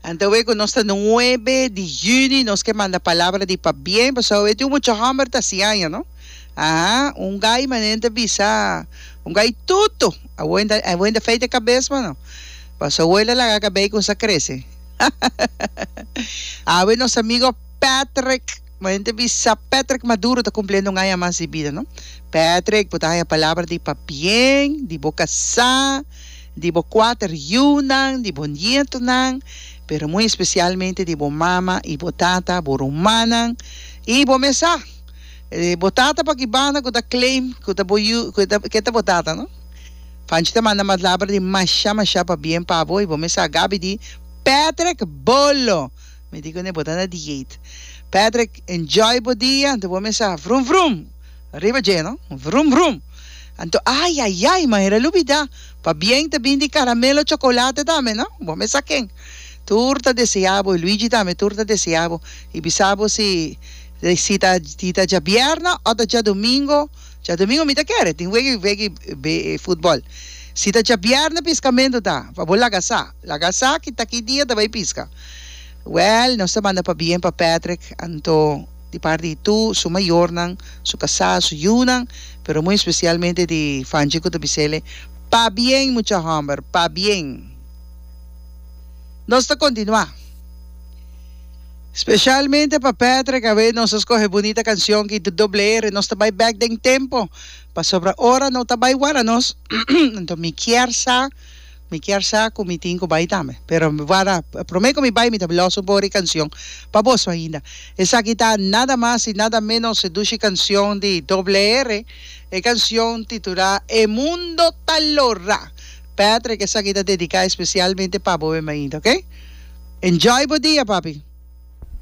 Anto awor cu nos ta nuebe di juni nos ke manda palabra di pabien pasobra awor tin un mucha homber ta hasi aña no aha un gai manera ta bisa un gai tutu awor inda awor inda afeita e cabes mano pasobra awor el a laga cabei cuminsa crece awor nos amigo Patrick Bo hende bisa Patrick Maduro ta kumpliendo un aña mas di bida, no? Patrick, bo ta haña palabra di pabien di bo kasá, di bo kuater yunan, di bo nietonan, pero muy especialmente di bo mama i bo tata, bo rumannan i bo mesá. E bo tata pa ki banda ku ta claim ku ta bo yu ku ta ke ta bo tata, no? Panchi ta manda malabra di mashá mashá pabien pa bo i bo mesá, Gabby di Patrick bolo. Mi di cu ne bo ta na dieet. Patrick, enjoy bo dia. Anto bo a mesa, vrum vrum. Riba dje no, vrum vrum. Anto, ay ay ay, manera lo bida. Pa bien ta bin di caramelo chocolate tambe no. Bo a mesa ken tur ta desea bo y Luigi tambe tur ta desea bo. Y bisa bo si si ta si ta djabierna o ta djadomingo. Djadomingo mi ta kere, tin wega wega football. Si ta djabierna piscamento ta pa bo laga sa. Laga esaki ta ki dia ta bay pisca? Well nos ta manda pabien pa Patrick anto di parti di tur su mayornan, su casá, su yiunan, pero muy especialmente di Fanchi cu ta bisele pabien mucha homber, pabien! Nos ta continua. Specialmente pa Patrick awe nos a scoge bunita cancion ki di Doble R, nos ta bay bek den tempo pasobra ora no ta bay wara nos anto mi kier sa Mi kier sa cu mi tin cu bay tambe. Pero wara prome cu mi bay mi ta los un poco di cancion pa boso ainda. Esaki ta nada mas y nada menos e dushi cancion di Doble R. E cancion titura E mundo ta lora. Patrick esaki ta dedica especialmente pa bo bemba ainda ok. Enjoy bo dia papi.